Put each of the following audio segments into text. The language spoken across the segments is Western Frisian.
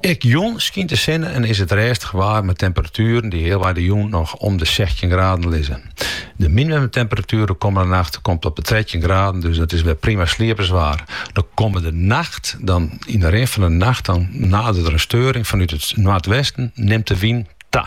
Ek jûn skynt de sinne en is it rêstich waar mei temperatueren dy't healwei de jûn noch om de sechstjin graden lizze. De minimumtemperatuer de kommende nacht komt op de trettjin graden, dus dat is wer prima slieperswaar. De kommende nacht dan, yn de rin fan de nacht dan nadert der in steuring fanút it noardwesten, nimt de wyn ta.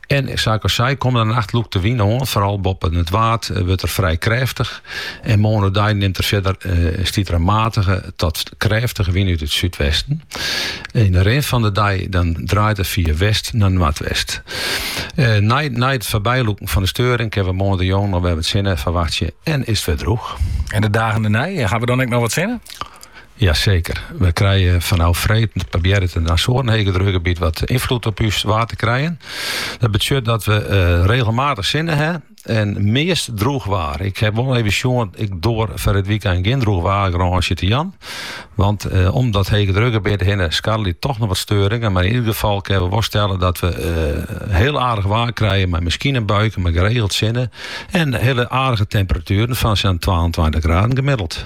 En sa't ik al sei, kommende nacht lûkt de wyn oan, foaral boppen it Waad wurdt er frij krêftich en moarn oerdei nimt er fierder en stiet der in matige tot krêftige wyn út it súdwesten. Yn de rin fan de dei dan draait er fia west nei noardwest. Nei nei it foarbylûken fan de steuring kinne we moarntejûn noch wer wat sinne ferwachtsje en is it wer droech. En de dagen dêrnei, hawwe we dan ek noch wat sinne? Jaseker. We krije fanôf freed probearret in Azoaren hegedrukgebiet wat ynfloed op ús waar te krijen. Dat betsjut dat we eh, regelmatich sinne ha en meast droech waar. Ik ha wol even sjoen, ik doar foar it wykein gjin droechwaargarânsje te jaan. Want eh, om dat hegedrukgebiet hinne skarrelje toch noch wat steuringen. Mar yn ider gefal kinne we wol stelle dat we eh, hiel aardich waar krije. Mar miskien in buike, mar geregeld sinne. En hiele aardige temperatueren fan sa'n 22 graden gemiddeld.